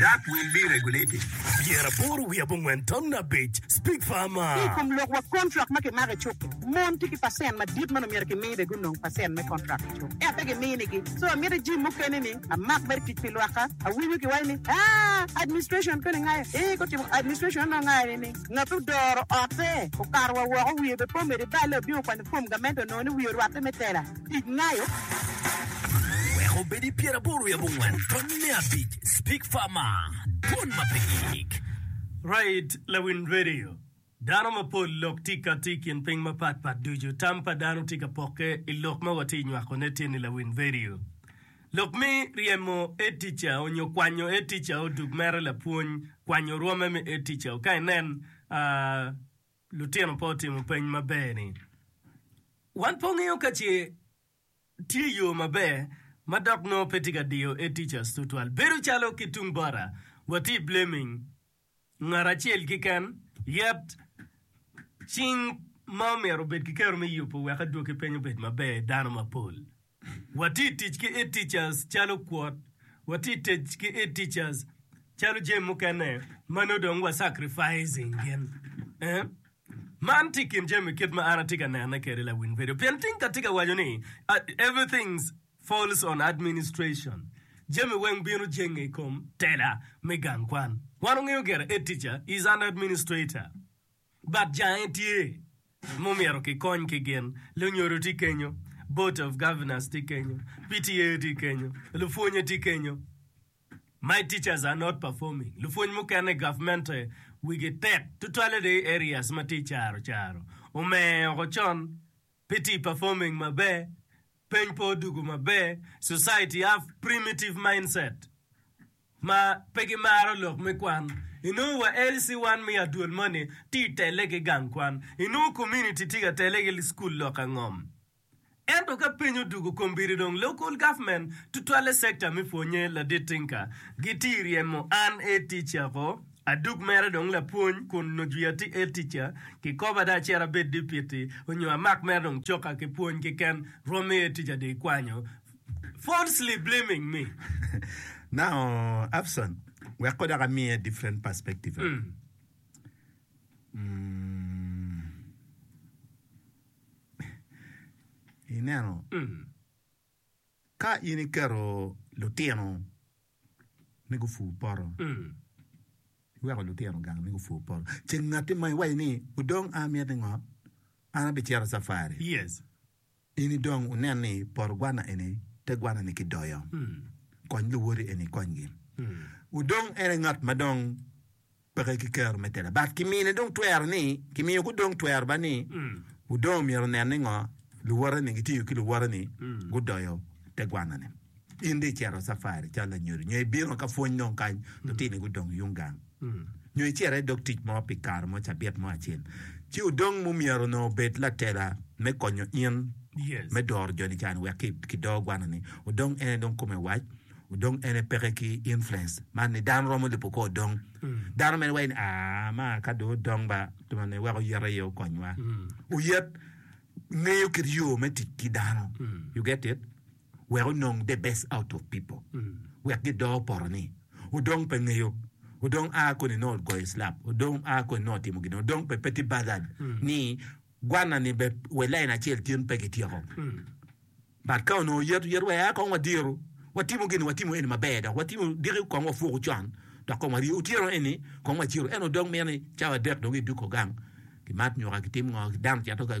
Dak wil biri rego leti. Pyera aboro wiye abongwen tamna abic, Speak farmer. Ki i kom lok wa kontrak ma kimako i cuk-ki, mon tye ki pacent madit ma omyero kimi be gunong pacent me kontrak i cuk, ento pe giminigi. So amiti jim mukene ni amak mere tic pi lwakka. Awinyo ki waci ni, Aa, administration koni ngayo? Ee, gutimo administration onongo ngayo ni ni ngat odoro otte, okato wa woko, wiye be po mede balle, obino kwanyo fom gamente onongo ni wiye orwatte me tela. Tic nayo weko obed i pyer aboro wiye abongwen tony me abic Speak Farmer Dwon ma pe gik. Right Lawiny Radio Dano mapol lok tye ka tye i kin piny mapat pat ducu tam pa dano tye ka pokke i lok ma watye nywako ne tye ni Lawiny Radio lok me ryemo air teacher onyo kwanyo air teacher o dug mere lapwony kwanyo rwome me air teacher o ka inen aa Lutino pe otimo peny maber ni, Wan pe wangeyo ka ce tye yo maber ma dok nongo pe tye ka diyo A-Teachers tutwal. Bedo calo ki tung bota, watye blaming ngat acel keken, yet cing ma omyero obed kiketo me yubo wek adwoki peny obed maber dano mapol. Watye i tic ki e-teachers calo kwot, watye i tic ki e-teachers calo jami mukene ma nongo dong wa sacrificing gin. Eh, man tye i kin jami kit ma an atye ka nene kwede lawiny bedo, pien tingka atye ka waco ni everything falls on administration, jami weng bino jenge i kom tela me gang kwan. Wan wungeyo gire e-teacher is an administrator. Bad jange tye ma omyero ki kony ki gin, lunyodo tye kenyo, board of governors tye kenyo, PTA tye kenyo, lupwonye tye kenyo, my teachers are not performing, lupwony mukene government wigi tek tutwale dong i areas ma tye caro caro, omer oko con pe tye performing maber, peny pe odugu maber, society have primitive mindset. ma pe gimaro lok me kwan, inongo wa LC wan me adwol moni tye i tele ki gang kwan, inongo community tye ka tele ki school lok angom. Ento ka piny odugo kombeddi dong local government tutwalle sector me pwonye ladit tinka gitye i ryemo an head teacher ko adug mere dong lapwony kun nyo jwi atye head teacher kikobo ada acito abed deputy onyo amak mere dong coka ki pwony keken rwom me head teacher dong ikwanyo falsely blaming me. Now Abson wek ko dok amiye different perspective. Mm. Mm. Ineno Mm. ka in iketo lutino ni gufu poto Mm. iweko lutino gang ni gufu poto ceng ngatti ma iwaci ni udong a miti ngo an abicito safari Yes. In i dong wunen ni poto gwana eni te gwana ni ki doyo, kony luwoti eni ikony gi. Wu dong en aye ngat ma dong peke ki kero me tela, but ki mine dong twero ni, ki miyo ku dong twero ba ni, wu dong myero nen ni ngo luwote ni gitiyo ki luwote ni gu doyo te gwana ni. In dong icito safari calo lanyodo, nyo ibino ka pwony dong kany, lutini gu dong yung gang. nyo icito i dog tic mo pi kare mo cabit mo acel, ci odong mu myero onongo obed latela me konyo in me doro jo nican wek ki do gwana ni odong en aye dong kome wac, odong en aye peke ki influence man ni dano romo lubo ko odong dano mene waci ni aa ma ka dong odong ba nongo wek oyet aye okony wa, oyet ngeyo kit yo me tic ki dano you get it. wek onong the best out of people wek gidor poto ni odong pe ngeyo odong a koni nongo ogoyo slap odong a koni nongo otimo gin odong pe pe tye bothered ni gwana ni be we line acel tyen pe gityeko but ka onongo yet yet wa ya kong wa diro wa timo gini wa timo eni maber dok wa timo diki kong wa fuku con dok kong wa rye otyeno eni kong wa ciro eno dong miti cawa adek dong idoko gang ki mat nyoka ki tim ngo dano cito ka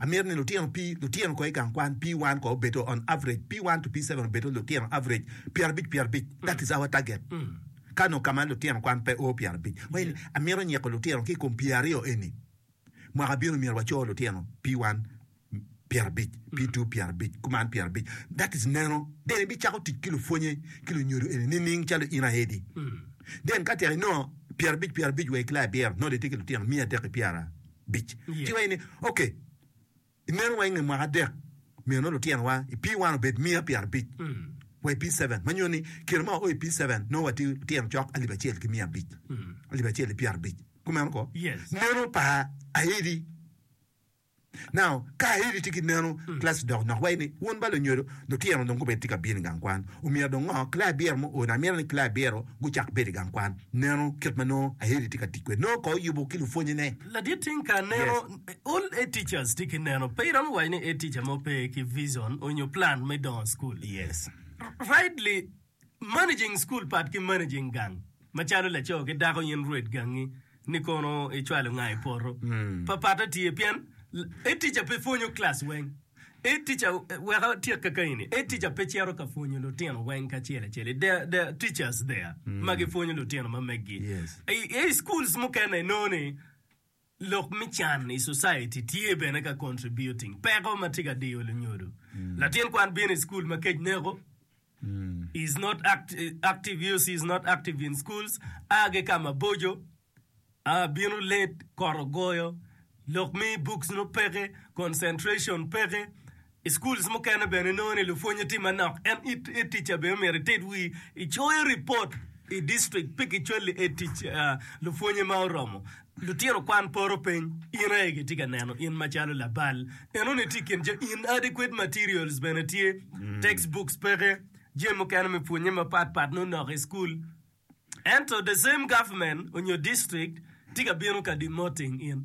Amito ni lutino pi lutino ko i gang kwan pi wan ko obedo on average pi one to pi seven obedo lutino average pyerabic pyerabic that is our target ka nongo kama lutino kwan pe oo pyerabic wai amito nyiko lutino ki kom pyer aryo eni mwaka bino myero waco lutino pi one pyerabic pi two pyerabic kuman pyerabic that is neno then ibi cako tic ki lupwonye ki lunyodo eni nining calo in aye di then ka tek inongo pyerabic pyerabic wa i kila abiro nongo de itye ki lutino miya adek ki pyera bic. Ci iwaco ni, Ok, i meno wa i nge mwaka adek, myero lutino wa i P-one obed miya pyerabic wa i P-seven, ma nyuto ni kine ma wao i P-seven nongo watye lutino cok alip acel ki miya abic, alip acel ki pyerabic. Kumeno ko, meno pa Aidi. Now, ka Aidi tye ki meno, Classes dok nok waco ni, Wun ba lunyodo, Lutino dong gubed tye ka bino i gang kwan. Omyero dong ngo? Claire Beer mo ooni, Amito ni Claire Beer-ro gucak bedo i gang kwan. Neno kit ma nongo Aeli tye ka tic kwede. Nongo ka oyubo ki lupwonnyene. Ladit king ka aneno all head teachers tye ki neno, pe iromo waco ni head teacher mo pe ki vision onyo plan me dongo school. Rightly Managing School pat ki managing gang macalo laco ki dako in rwed gangi ni kono i cwalo nga i poto pa patte tye pien head teacher pe pwonyo class weng head teacher wek atyek kaka eni head teacher pe cito ka pwonyo lutino weng kacel acel i there there are teachers there ma gi pwonyo lutino ma megi yes i schools mukene inongo ni Lok me can i society tye bene ka contributing peko ma tye ka diyo lunyodo. Latin kwan bino i school ma kec neko, is not active use is not active in schools, a ki ka maboco, a bino late, kot ogoyo, lok me books nongo peke, concentration peke. I schools mukene bene inongo ni lupwonye tye manok en i teacher bene myero ited wii icoyo report i district pe kicwali i tic lupwonye ma oromo lutino kwan poro piny in aye kitye ka neno in macalo labal eno ni tye i kin jo in adequate materials bene tye text books peke jami mukene me pwonye mapat pat nongo nok i school ento the same government onyo district tye ka bino ka demoting in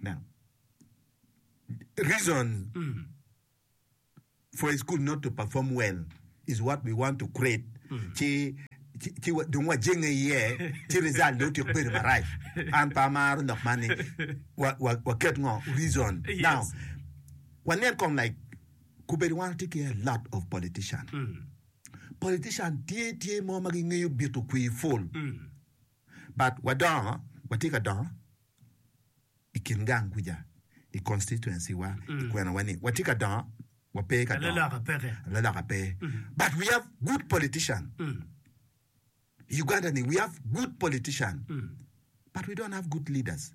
Now, reason for a school not to perform well is what we want to create. Ci ci ci wa- dong wajenge iye ci result ne otyek bedo marac. An pe amaro lok man ni wa- wa- waket ngo reason. Yes. Now, wanen kong like kubedo wan watye ki a lot of politician. Politician tye tye mo ma gingeyo bito kwir full. but wadongo watye ka dongo i kin gang kuca i constituency wa i kwena wa ni watye ka dongo wape ka dongo Alaloka peke. alaloka pe but we have good politician i Uganda ni we have good politician but we don't have good leaders.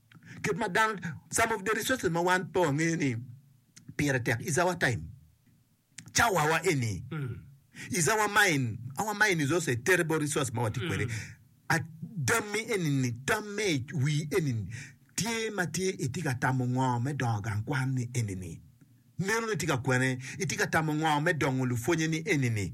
Kit ma dang some of the resources ma wan pe wangeyo ni pire tek is our time, cawa wa eni is our mind, our mind is also a terrible resource ma watye kwede. A Tammi eni-ni, tam me i wii eni-ni, tye ma tye itye ka tamo ngo me dongo gang kwan ni eni-ni? Neno ni itye ka kwene, itye ka tamo ngo me dongo lupwonye ni eni-ni?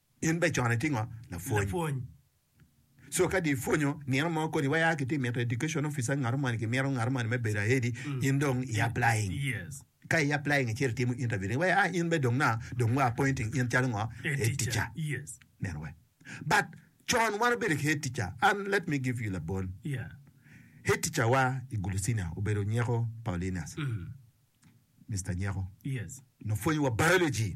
In be cone tingo lapwony. So ka di ipwonyo nino mo kodi waya ki ti mito education officer ngato moni ki mito ngato moni me bedo ahead-di, in dong i applying. Ka i applying icito itimo interview ni waya in be dong na dong wa appointing in calo ngo? Head teacher. Neno wai. But con wan obedo ki head teacher and let me give you labol. Head teacher wa i Gulu Senior obedo Nyeko Paulinus. Mister Nyeko. Nopwonyo wa biology.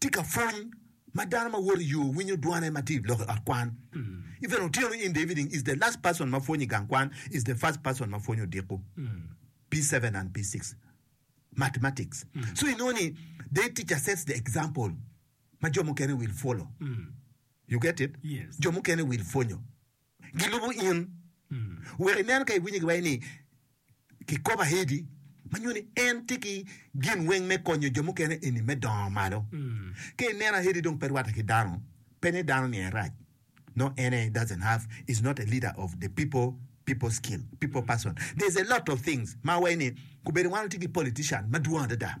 Tika pwony ma dano ma woto i yo winyo dwane ma tye i lok i ot kwan? Even otyeno in the evening is the last person ma pwonyo i gang kwan is the first person ma pwonyo odiko P seven and P six mathematics so inongo ni their teacher sets the example ma jo mukene will follow you get it? Yes. Jo mukene will pwonyo. gilubo in. Wek inen ka iwinyo giwaco ni kikopo ahedi ma nyuto ni en tye ki gin weng me konyo jo mukene eni me dongo malo. Ka ineno ahedi dong pe rwatte ki dano, pe ni dano ni en rac. No en aye doesn't have, is not a leader of the people, people skill, people person. There's a lot of things ma awaco ni kubedi wan watye ki politician madwong adada.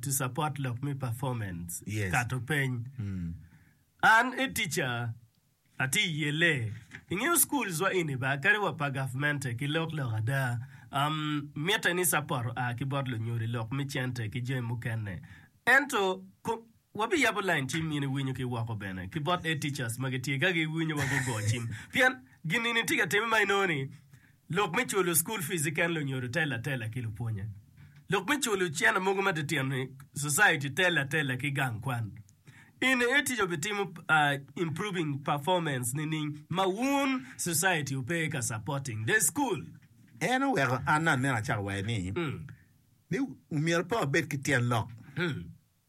to support lok me performance yes. kato peny mm. an e teacher ati iye le ingeyo schools wa ini ba kadi wa pa government ki lok lok ada um, mitte ni support a ki bot lunyodi lok me cente ki jami mukene ento Wabiyabo lain cim in iwinyo ki woko bene ki bot Ed Teachers ma gitye ka giwinyo wa gugo cim pien gin eni tye ka timme ma inongo ni lok me culo school fees keken lunyodo telo atela ki lupwonye, lok me culo cene mogo matitino ni society telo atela ki gang kwan. In Ed Teacher obitimo improving performance nining ma wun society wupe ka supporting the school? En oweko an aneno acakka waco ni myero pe wabed ki tyen lok.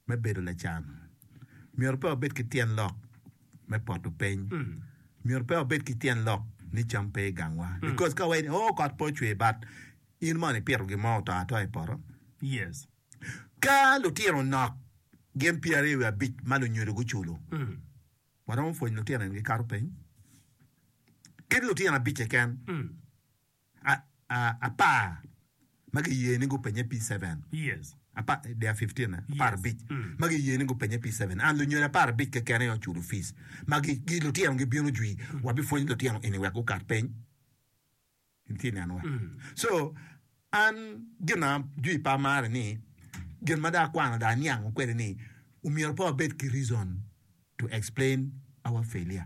me bedo lacan myero pe wabed ki tyen lok me poto piny, myero pe wabed ki tyen lok ni cam pe i gangwa because ka wayie ni oh kot pe ocwer but in mono ipito gin mo oto atoa i poto? Yes. Ka lutino nok gin pyeraryo wiye abic ma lunyodo guculo, waromo pwonyo lutino eni gikato piny? Kit lutino abic keken. apar ma giye ni gupenye pi cevn, and lunyodo apar abic keken aye oculo fic, ma lutino gibino jwi wa bi pwony lutino eni wek gukat piny, in ci ineno wa, so an gina jwi pe amaro ni gin ma dong akwano dong aniango kwede ni omyero pe wabed ki reason to explain our failure.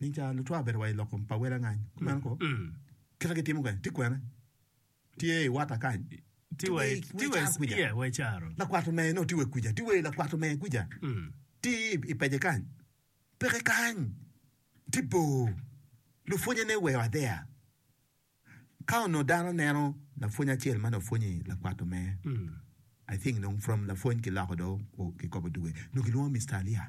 Nining ca lucwak obedo wa i lok kom pa wel angany? Kumeno ko, kit ma gitimo kwede tye kwene? Tye i Wata kany. Tye wa i caro. Lakwat omer nongo tye wa kwija. Tye wa i lakwat omer kwija. Tye i pece kany. Peke kany. Tye bor. Lupwonnyene oweyo adea. Ka onongo dano neno lapwony acel ma nongo pwonyo i lakwat omer, I think nongo from lapwony kiloko do kikobo dwe. Nongo kilwongo Mister Alia.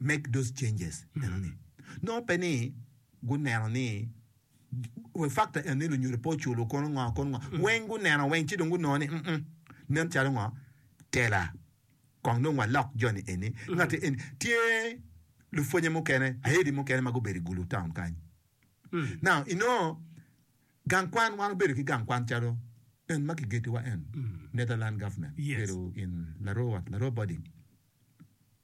make those changes enoni nongo pe ni guneno ni we factor enoni lunyodo pe oculo kono ngo kono ngo weng guneno weng ci dong gunongo ni mm nen calo ngo tela kong dong walok joni eni ngati eni tye lupwonye mukene ayedi mukene ma gubedo i gulu town kany now inongo gang kwan wan wabedo ki gang kwan calo en ma kigetiwa en Netherland government Yes. bedo in Larua Larua boarding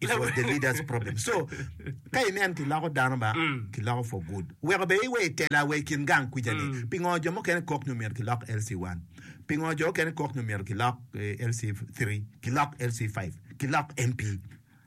it was the leader's problem so ka inen kiloko dano ba mm. kiloko for good weko be iwe itela we kin gang kwica ni mm. pingo jo mukene kok nyo myero kilok LC1 pingo jo mukene kok nyo myero kilok eh, LC3 kilok LC5 kilok MP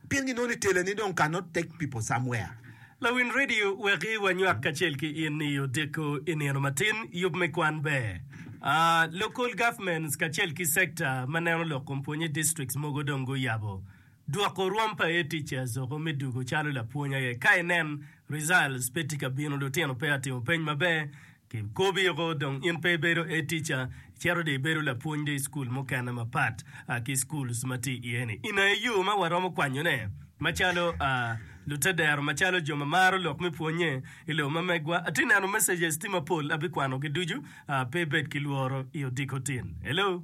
pien ginoni itela ni dong cannot take people somewhere Lawin radio weki wanywak kacel ki in i odeko i nino matin yub me kwan ber. Uh, local governments kacel ki sector ma neno lok kom pwonye districts mogo dong guyabo Dwoko rwom pa aye ticce azoko me dugo calo lapwony aye ka inen results pe tye ka bino lutino pe atimo peny maber ki kobi oko dong in pe ibedo aye ticca icito dong ibedo lapwony dong ischool mukene mapat ki schools ma tye iye ni in aye yo ma waromo kwanyo ne macalo lute dero macalo jo ma maro lok me pwonye ilobo ma megwa atye neno messages tye mapol abikwano gi ducu pe ibed ki lworo i odiko tin hello.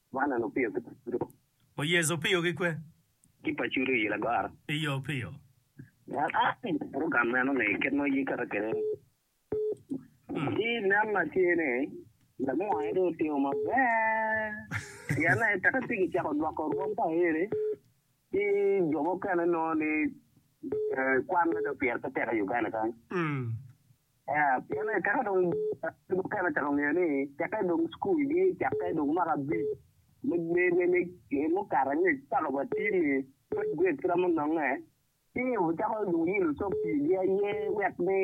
Man en opiyo ki pacudo. Oyezu opiyo ki kwe. Ki pacudo i lagoro. I yo opiyo. Ngat acel i purugram meno ni kit ma ye kata kede ni nen ma tye ni lamone dong otimo maber pien ni tek ati ki cako dwoko rwom pa ere ki jo mukene nongo ni kwan me dong pire pe tek i Uganda kany. Pien eka ka dong jo mukene ocako ngeyo ni cakke dong cukul gi cakke dong mwaka abic me mukato angec paka wa tir-ri, third grade kit ma munonge, ci wucako dong wuyilo cok pigi aye wek ni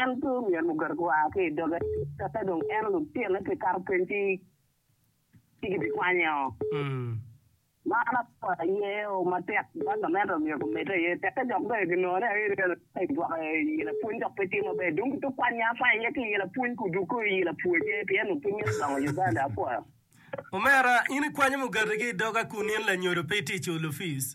en pe omyero muket wa ki i doge cakke dong en lutine pekato peny ci kibikwanye-o. Man akwena aye o matek ma gamente omyero omedde aye, tekke dok bene ginongo ni aye ryal aye i gwoko iyi lapwony dok pe tye maber. Dong gituk kwan nya apar aye ki iyi lapwony ka odwogo kong iyi lapwoje pien onongo pud mito dongo i Uganda. Apwoyo. Omera, in ikwanyo mugati ki i doga kun in lanyodo pe iticco olufic.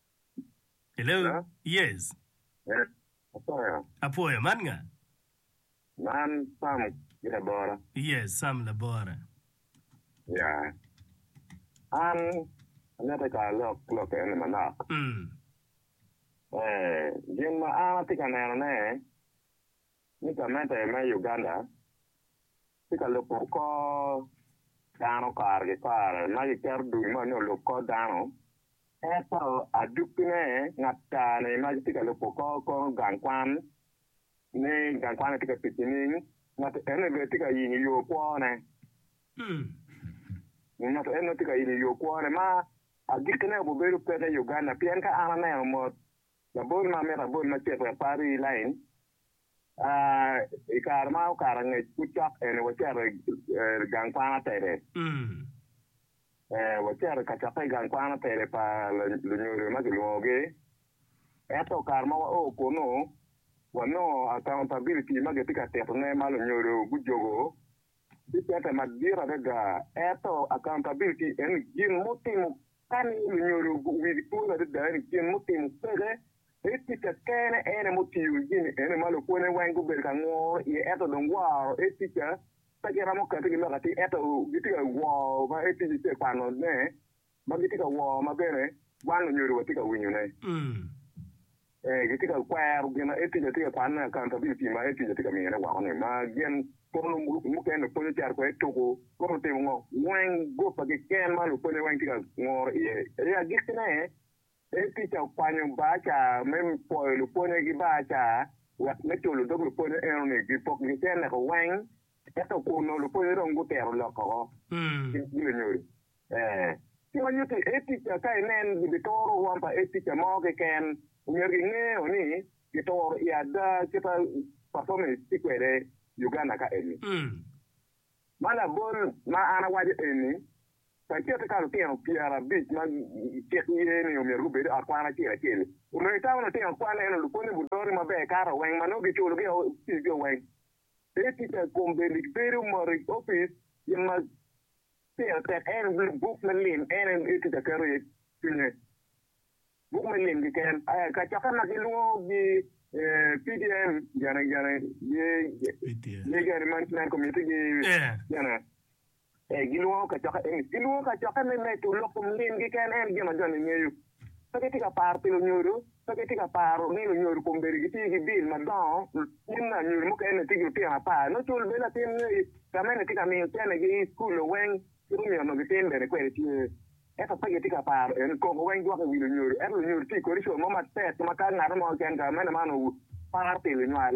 Hello? Hello? Yes. Eh, Apwoyo. Apwoyo, man nga? Man Sam ki labora. Yes, Sam labora. Ya. An amito ka alok lok eni manok. Mm. Eh, gin ma an atye ka nenone, ni gamente me Uganda tye ka lubo kor dano kare ki kare ma giketo dul ma nongo olub kor dano, ento adukkine ata-ni ma gitye ka lubo kor kono gang kwan ni gang kwan-ni tye ka tic nining? Ngat eno bene tye ka yenyo yo kwone, ngat eno tye ka yenyo yo kwone ma agikkine obibedo peke i Uganda pien ka an aneno mot Labol ma amito abol macek wek par rii i lain, I kare ma okato angec pud cok eni wacito i gang kwan atede. Wacito i kacokke i gang kwan atede pa lunyodo ma kilwongogi. Ento kare ma wao kunnu, wanongo accountability ma gitye ka titone ma lunyodo gujogo Atye kete madit adada, ento akauntabil ti en ni gin mutimo kani lunyodo wigi twolo adada eni gin mutimo peke ei ticca kene ene mutiyo gini ene ma lukone weng gubedo ka ngoro iye ento dong woro ei ticca pe giromo kati gi lok atir ento giti ka woro ma ei ticca ce kwano ne ma gitye ka woo ma bene wan onyodo watye ka winyone. Ee, gitye ka kwero gin ma Etija tye ka kwanone akan pa bilcim ma Etija tye ka miyone woko-ni, ma gin polo mukene pwonyo cito kwede tuku kong otimo ngo. Weng guppa keken ma lupwonye weng tye ka ngoro iye. I agikkine, Etija okwanyo bar ca me pwoyo lupwonye ki bar ca wek me culo dog lupwonye eno-ni gipok gicenneko weng, ento kun onongo lupwonye dong gutero lok woko ki lunyodo. Ee, ci ma nyutti Earth Teacher ka inen gibituro rwom pa Earth Teacher mo keken, omyero gingeyo ni gituro i ada kita performance tye kwede Uganda ka eni. Ma labol ma an awaco eni, pa ikette ka lutino pyerabic ma cik ye ni omyero gubed i ot kwan acel acel, onongo itamo ni lutino kwan eno lupwonyo Budhoni maber kato weng ma nongo giculo gi o fees-gio weng. Earth Teacher kombe ni gibedo mot i office gin ma Pire tek en obed buk me lim en en tye ka keto iye cwinye. Buk me lim keken. Kacokke ma gilwongo gi PDM gene gene gene gene management committee gi gene gilwongo kacokke eni gilwongo kacokke me medo lok kom lim keken en gin ma jo ni ngeyo. Pe gitye ka paro pi lunyodo, pe gitye ka paro ni lunyodo kombeddi gitye ki bil madongo. Gin me anyodo mukene tye ki lutino apar, nongo cul bed latin ngeye, gamente tye ka miyo cenegi i cukul loweng ki lumi onongo gitin bene kwede tye. Ento pe gitye ka paro eni, koko weng dwoke i wi lunyodo, ento lunyodo tye kodi co mo matek ma ka ngat mo keken gamente man oparo pi lunywal,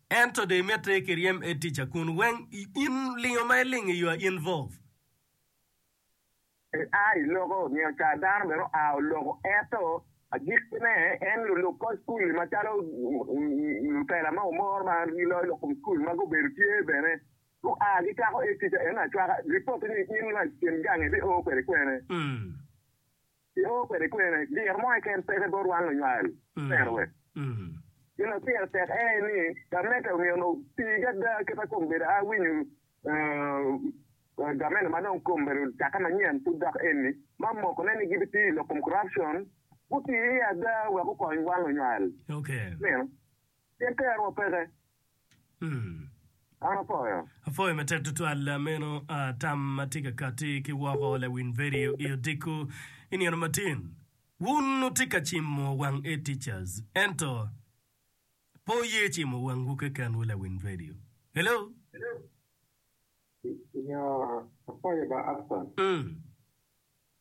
Ento do imette i kiryem e tica kun weng i in lingo ma ilingo iyo a in vov. Pe a i loko nio ca dano bene oa oloko eto agikkine en luluk kor school li macalo lutela ma omor ma giloyo lok kom school ma gubedo tye bene gua gicako e tica eno acwaka report ni in lwak kin gang ibio kwede kwene. Piko kwede kwene, diro mo keken peke bot wan lunywal. Tero we. Gin ma pire tek aye ni, gamente omyero otiigi ada kit ma kong bedo a winyo gamente ma dong kong bedo cakke manyen pud dok eni, ma mokone ni gibitiyo i lok kom corruption, guti iye ada wek gukony wan lunywal. Mino. Pien tero wa peke. An apwoyo. Apwoyo matek tutwal meno tam ma tye ka kati ki woko lawiny vedio i odiko i nino matin. Wun wutye ka cimo wang A Teachers ento pe wuye cimo wangwu kekenwu lawiny vedio. Hello. Nyo apwoyo ba Upson. Mm.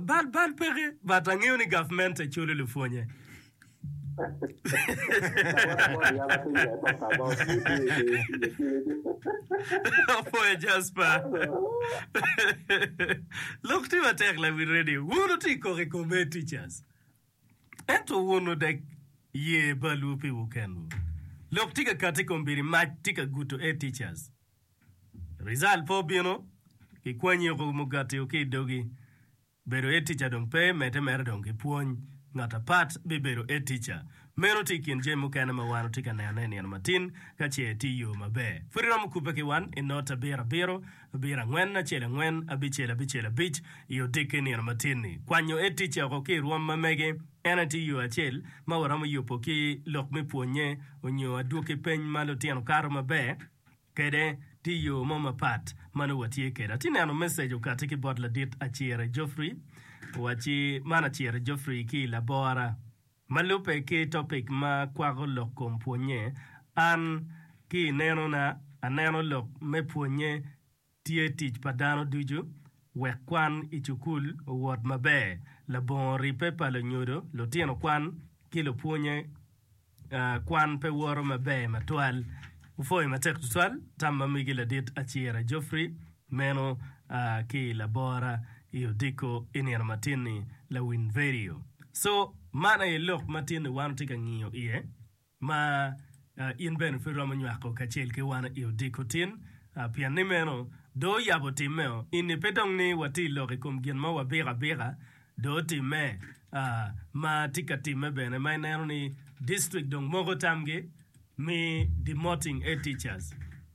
Bal bal peke but angeyo ni government culo lupwonye. Apuoyo Jasper. Lok tye matek la wi radio. Wun wutye kok i committee teachers. Ento wun odek ye balwu piwu kenwu. Lok tye ka kati i kombedi mac tye ka guto e teachers. Result pe obino, kikwanyi oko mugati o ki i dogi. Bedo e teacher dong pe mete mere dong ki pwony. Ngat apat bibedo e teacher. Meno tye i kin jami mukene ma wan otye ka nene i nino matin ka ce tye yo maber. Pud iromo kubbe ki wan i note abiro abiro Abiro angwen acel angwen, abicel abicel abic, i otikke nino matin-ni. Kwanyo aye ticce oko ki i rwom ma mege. En aye tye yo acel ma waromo yubo ki lok me pwonnye onyo adwoki peny ma lutino kato maber kwede. Tye yo mo mapat ma nongo watye kwede. Atye neno message okati ki bot ladit Acire Geoffrey. Owacci, Man Acire Geoffrey ki i labora. Ma lubbe ki topic ma kwako lok kom pwonnye, an ki i nenona aneno lok me pwonnye tye tic pa dano ducu wek kwan i cukul owot maber. Labongo ribbe pa lunyodo, lutino kwan, ki lupwonnye kwan pe woto maber matwal. Wupwoyo matek tutwal tam ma megi ladit Acira Geoffrey. Meno a ki i labora i Odiko i nino matin-ni, Lawiny Verio. Co, Man aye lok matin-ni wan wutye ka ngiyo iye, ma in bene pe iromo nywako kacel ki wan i Odiko tin, pien ni meno dong oyabo timmeo. Eni pe dong ni watye lok i kom gin mo wabiko abika, dong otimme, a ma tye ka timme bene, ma ineno ni district dong moko tamgi mi demoting head teachers.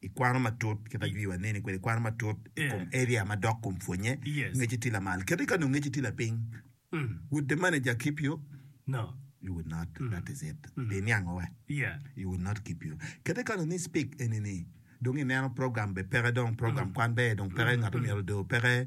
Ikwano matut kit ma jwiwa neni kwede, ikwano matut i kom area ma dok kom pwonye ngeci tye lamal kadi ka nongo ngeci tye lapiny. Would the manager keep you? No. You would not. That is it. Iniango wa. You would not keep you. Kadi ka nongo ni speak enini dong ineno program be peke dong program kwan be dong peke ngat omyero do peke.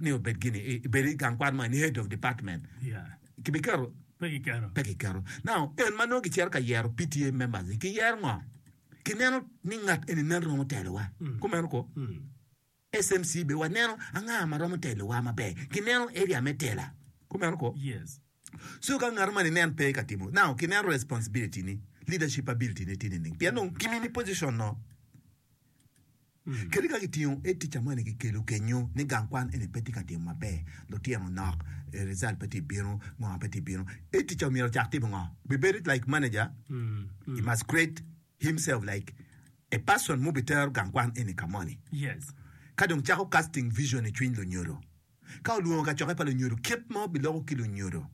ni obed gini i bedo i gang kwan man, head of department, kibiketo? Pe kiketo. Pe kiketo. Now, en ma nongo gicito ka yero PTA members ni kiyero ngo? Kineno ni ngat eni nen romo telowa. Kumeno ko. SMC be waneno anga ma romo telowa maber. Kineno area me tela. Kumeno ko. Yes. So ka ngat man inen pe ka timo now ki neno responsibility ni, leadership ability ne tye nining? Pien dong ki mini position no kadi ka ki tingo e teacher moni ki kelo kenyo ni gang kwan eni pe tye ka timo maber, lutino nok, result pe tye bino, ngo pe tye bino, e teacher omyero ocak timo ngo? Bi bedo like manager, he must create himself like a person mu bi tero gang kwan eni ka moni. Yes. Ka dong cako casting vision icwiny lunyodo. Ka olwongo kacokke pa lunyodo, kit ma obiloko ki lunyodo.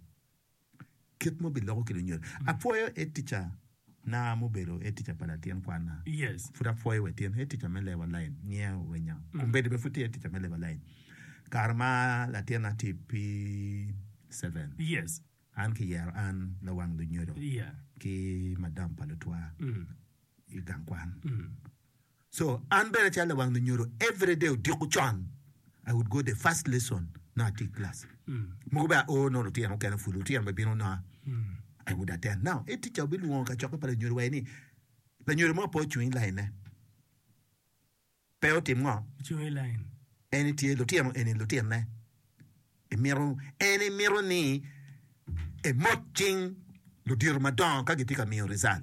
Kit ma obiloko ki lunyodo. Apwoyo Head Teacher na ma obedo Head Teacher pa latin kwanna. Pud apwoyo wa tin. Head Teacher me Lewa Line ngiya orwenya. Kombeddi bene pud tye Head Teacher me Lewa Line. Kare ma latinna tye i P-seven, an kiyero an lawang lunyodo ki madam pa lutwa i gang kwan. So an bene calo lawang lunyodo every day odiko con I would go the first lesson nongo atye i class. Mogo bene aoo nongo lutino mukene pud lutino bene bino nongo I would attend. Now head teacher obilwongo kacokke pa lanyodo wa ni lanyodo mo pe ocung i line ne pe otim ngo? Ocung i line. En tye lutino eni lutino ne imito en imito ni emot cing ludito madongo ka gitye ka miyo result.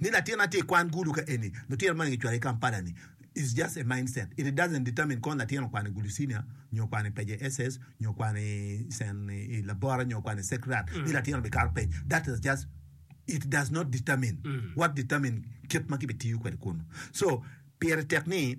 Ni latin na tye i kwan gulu ka eni, lutino moni gicwalo ki Kampala ni is just a mindset, it doesn't determine kong latin okwano i gulu senior nyo okwano i peje SS nyo okwano i cen i labora nyo okwano i secrat ni latin obikato pec that is just it does not determine what determine kit ma kibitiyo kwede kunu so pire tek ni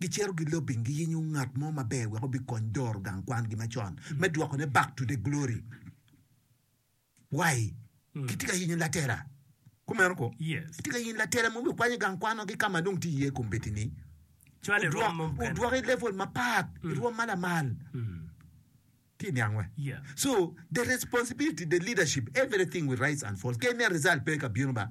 Gicito gilobing giyenyo ngat mo maber wek obikony doro gang kwangi macon me dwokone back to the glory wai kitye ka yenyo latela kumeno ko kitye ka yenyo latela mo me kwanyo gang kwan wagi kama dong tye iye kombeddi ni odwok i level mapat i rwom ma lamal tye niang we so the responsibility the leadership everything will rise and fall kene result pe ka bino ba.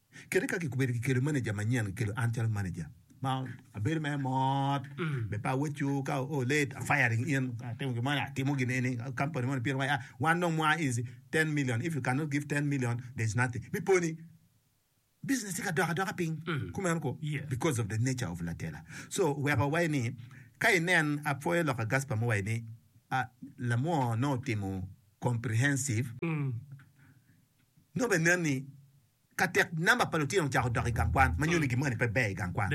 Kadi ka kikobedo kikelo maneja manyen, kikelo an calo maneja ma abedo mere mot be pe aweco ka o late a firing in atimo gin moni atimo gin eni company moni pire waya wan dong mwa is 10 million if you cannot give 10 million there is nothing mi poni business tye ka dok adoka piny kumeno ko because of the nature of latela so weko awayi ni ka inen apwoyo lok a Gasper muwayi ni a lamwo nongo otimo comprehensive Nongo bene nen ni ka tek namba pa lutino ocako dok i gang kwan, ma nyuto ni gin mukene pe ber i gang kwan.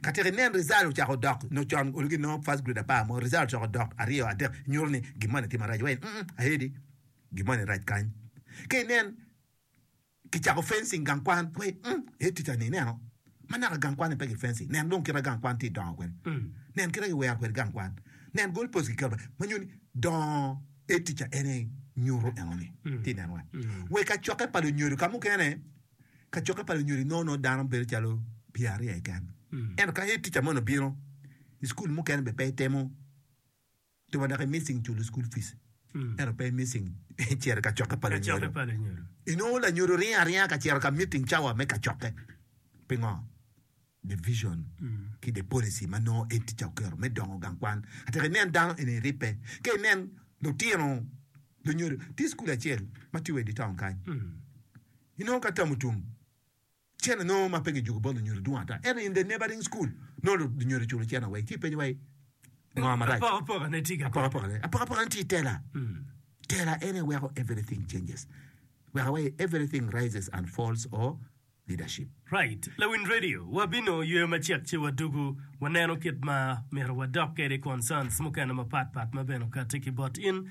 Ka tek inen rizal ocako dok nyo con onongo ginongo first grade apar mo, rizal ocako dok aryo, adek, nyuto ni gin moni tye marac weny? Mm-mm, aye di, gin moni rac kany. Ka inen kicako fencing gang kwan, iwaci, Mm, aye ticca-ni ineno? Ma naka gang kwanni pe gifenci, nen dong kite gang kwan tye dongo kwede. Nen kite giwero kwede gang kwan. Nen goal post kiketo pe ma nyuto ni dongo aye ticca en aye nyuto enoni. Tye nen wa we kacokke pa lunyodo ka mukene kacokke pa lunyodo inongo nongo dano bedo calo pye aryo keken ento ka head teacher moni obino i school mukene bene pe itemo Ento wa dok i missing culo school fees ento pe i missing cito i kacokke pa lunyodo. I nongo lanyodo ringo aringa ka cito ka meeting cawa me kacokke. Pingo? The vision ki the policy ma nongo Ed Tica oketo me dongo gang kwan atika inen dano eni ribbe ka inen lutino lunyodo. Tye school acel ma tye wa i di town kany inongo ka Tamutum. Cen anongo ma pe gijuko bot lunyodo dwong ata. Ento in the neighboring school nongo lunyodo culo cen awei ci ipenyo wa i ngo marac. Apokapoka ne tye keken. Apokapoka ne. Apokapoka ne tye tela. Tela ene weko everything changes. Weko wa i everything rises and falls or leadership. Right. Lawiny radio wa bino yweyo macek ci wa dugu wa neno kit ma myero wa dok kede concerns mukene ma pat pat ma bene okati ki bot in